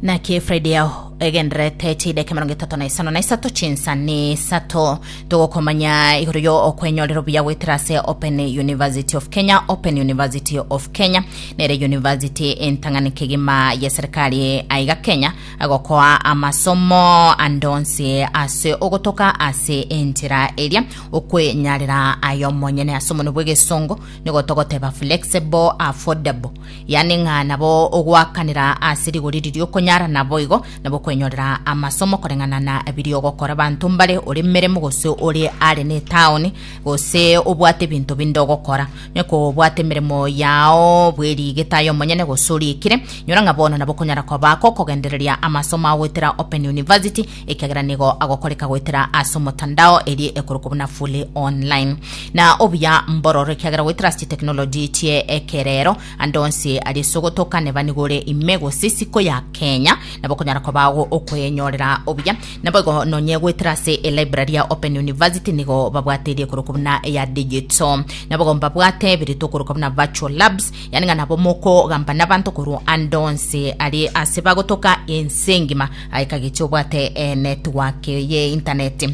naki friday yao egenderete chideke mirongo etato na isano na isato chinsa ni isato togokomanya igoro yo okwenyorera obuya goetera ase open university of kenya open university of kenya nere university entang'ani kegima ya serikali aiga kenya agokoa amasomo andonsi ase ogotoka ase enchera eria okwenyarera ayo monyene ase omonwe bw'egesongo nigo togoteba flexible affordable Yaani ng'a nabo ogoakanera ase rigori riria okonyara, naboigo nabo okwenyorera amasomo koreng'ana na biria ogokora banto mbare ore emeremo gose ore are netaoni gose obwate ebinto binde ogokora. Nonya kobwate emeremo yao bw'eriigete aye omonyene gose oriikire, inyora ng'a bono nabo okonyara koba akokogendereria amasomo ao goetera Open University ekiagera nigo agokoreka goetera ase omotandao eri ekorokwa buna fully online na obuya mbororo ekiagera goetera ase chiteknoloji chie ekerero ande onsi ari ase ogotoka neba nigo ore ime gose isiko ya kenya nabo okonyara koba ago okoyenyorera obuya nabo igo nonye goetera ase elibrary ya open university nigo babwate eri ekorokwa buna eya digital nabo igo mbabwate biri tokorokwa buna virtual labs yani ng'a nabo mokogamba nabanto korwa ande onsi ari ase bagotoka ense engima Aye kagechi obwate enetiwaki ye intaneti,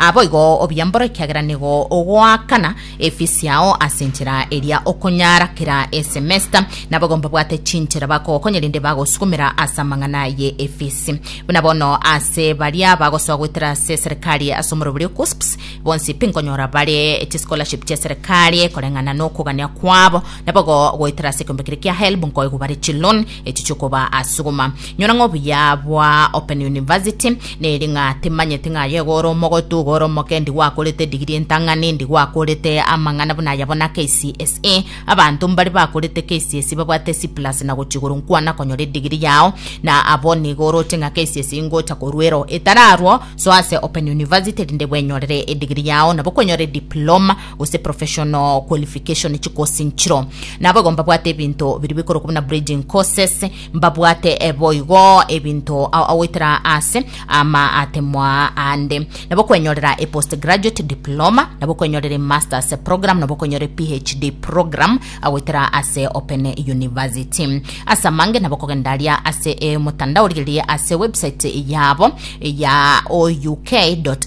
naboigo obiambore ekiagera nigo ogoakana efisi yao ase enchera eria okonyara kera esemesta. Naboigo mbabwate chinchera bakogokonya rende bagosugumera ase amang'ana ye efisi. Buna bono ase baria bagosoa goetera ase eserekari ase omorero boria KUSPS, bonsi pi nkonyora bare chischolarship chia eserekari koreng'ana nokogania kwabo. Naboigo goetera ase ekeombe keria kia HELB nkoigwa bare chiloan. Echi chikoba asuguma nyora ng'a obuya bwa Open University neri ng'a timanyeti ng'a aye gore omogotu gore omoke ndi gwakorete digiri entang'ani ndi gwakorete amang'ana buna aya bona KCSE abanto mbari bakorete KCSE babwate C plus na gochi igoro nkwana konyora edigiri yao na abo nigo oroche ng'a KCSE ngocha koruero etararwo soa ase Open University rinde bwenyorere edigiri yao nabo kwenyore diploma gose professional qualification chikosi nchiro nabo igo mbabwate ebinto biri bikorokwa buna breeding courses mbabwate eh, boigo ebinto a- agoitera ase ama atemwa ande nabo kwenyorera e postgraduate diploma nabo kwenyorera e masters program nabo kwenyorera e phd program agoitera ase open university ase amange nabo kogenda aria ase e motandao rigereria ase website yabo ya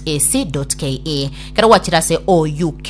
ouk.ac.ke Ekero gwachire ase ouk.ac.ke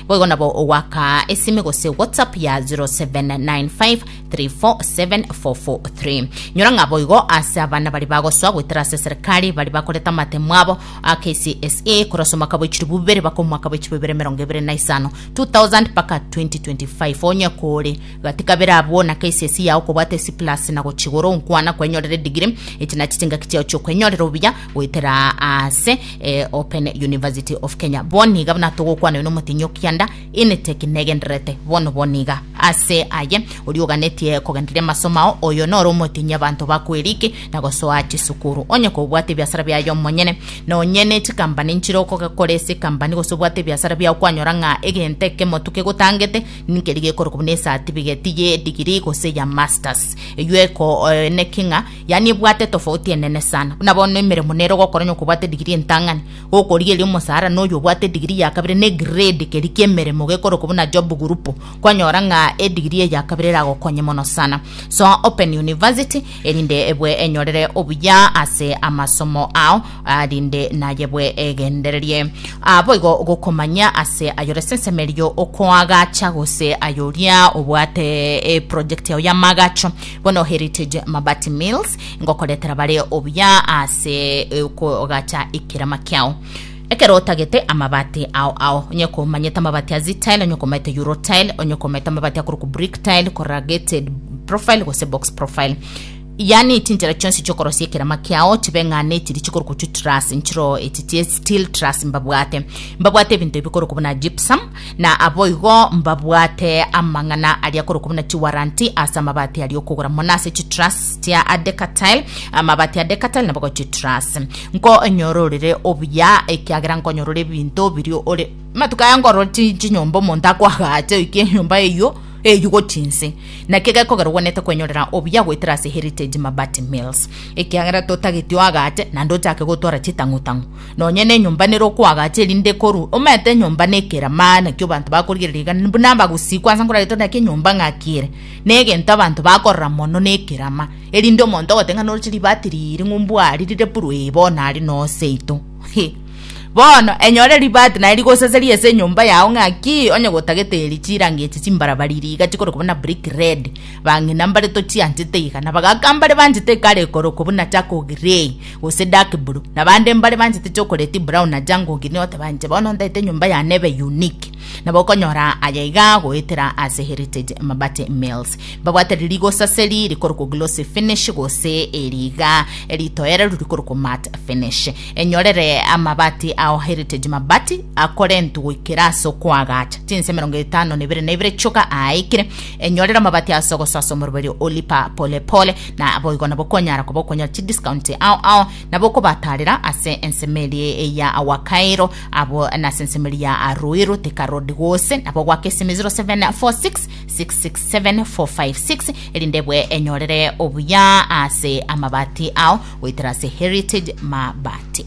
boigo nabo ogoakaa esime gose WhatsApp ya 0795347443. Nyora ng'a boigo ase abana baria bagosoa goetera ase eserekari baria bakorete amatemo abo a KCSE korwa ase omwaka bwa echirobu bibere baka omwaka bwa echirobu bibere emerongo ebere na isano, 2000 mpaka 2025. Onye kore gati kabere abwo na KCSE yao okobwata A-C+ na gochia igoro, nkwana kwenyorera edigiri. Echi nachi chingaki chiao chi'okwenyorera obuya. goetera ase e, Open University of Kenya. Bono iga buna togokwana na omotinyi o kianda Initeki negendererete bono bono iga. Ase aye oria oganetie kogendereria amasomo ao, oyo noro omotinyi abanto bakweriki na gosoa chisukuru. Onye kobwate ebiasara biaye omonyene, nonye ne chikambani nchire okogekora ase ekambani gose obwate ebiasara biao kwanyora ng'a egento ekemotu kegotangete nkeri gekorokwa buna esatifiketi ye digiri gose ya masters. Eyio eko, eh, neki ng'a Yaani ebwate etofauti enene sana. Buna bono emeremo nere ogokora onye okobwata edigiri entang'ani, gokorigeria omosaara na oyo obwate edigiri ya kabere na egrade keria ki'emeremo gekorokwa buna job group, kwanyora ng'a edigiri eye ya kabere eragokonye mono sana. Soa Open University erinde ebwe enyorere obuya ase amasomo ao ah, rinde naye ebwe egendererie ah, boigo gokomanya ase ayore sensemo erio okoagacha gose ayoria obwate eproject yao y'amaagacho Bono Heritage Mabati Mills ngokoretera bare obuya ase eh, okogacha ekerama kiao. Ekero otagete amabati ao ao, onye komanyete amabati a Z-tile, onye komanyete Euro tile, onye komanyete amabati akorokwa brick tile, corrugated profile gose box profile. Yani chinchera chionsi chiokorosia ekerama kiao chibe ng'a nechiri chikorokwa chu truss, nchiro echi chie steel truss mbabwate. Mbabwate ebinto ebi bikorokwa buna gypsum, na aboigo mbabwate amang'ana aria korokwa buna chiwaranti ase amabati aria okogora mono ase chitruss chia Adecatile, amabati a Decatile nabogo chitruss. Nkonyororere obuya ekiagera nkonyorora ebinto biri ore matuko aya nkorora chi- chinyomba omonto akwagache oike enyomba eyio eyio gochia inse naki gekogera ogwenerete kwenyorera obuya goetera ase Heritage Mabati Mills ekiagera totageti oagache naende ochake gotwara chitang'u tang'u Nonya nenyomba nere okoagacha erinde ekorwe, omanyete enyomba nekera maana nakio abanto bakorigereria igana, buna abagosikwa ase nkoragete naki enyomba ng'aki ere, negento abanto bakorora mono nekerama, erinde omonto ogote ng'a noroche ribati riiri ng'u mbwari rire buru ee bono are noo seito. Hee bono enyore ribati naye rigosasaria ase enyomba yao ng'aki onye gotagete eri chirangi echi chimbarabari iri iga chikorokwa buna brick red, bang'ina mbare tochianchete iga, na bagaka mbare banchete ekare ekorokwa buna charcoal grey. gose dark blue na bande mbare banchete chocolate brown na jungle green oteba inche bono ntaete enyomba yane ebe unique nabo okonyora aya iga goetera ase heritage mabati mills babwate ririgo saseri rikorokwa glossy finish gose eri iga ritoereru rikorokwa mat finish enyorere amabati ao heritage mabati akorentwe goikera ase okoagacha chinse emerongo etano na ibere na ibere choka aaikire enyorere amabati aso gososa omoroberio olipa polepole Naboigo nabo konyara koba okonyora chidiscount ao ao nabo okobatarera ase ensemo eria ya Wakairo abo nase ensemo eria ya Ruiru Thika Road gose nabo goaka esimi 0746667456 erinde ebwe enyorere obuya ase amabati ao goetera ase Heritage Mabati.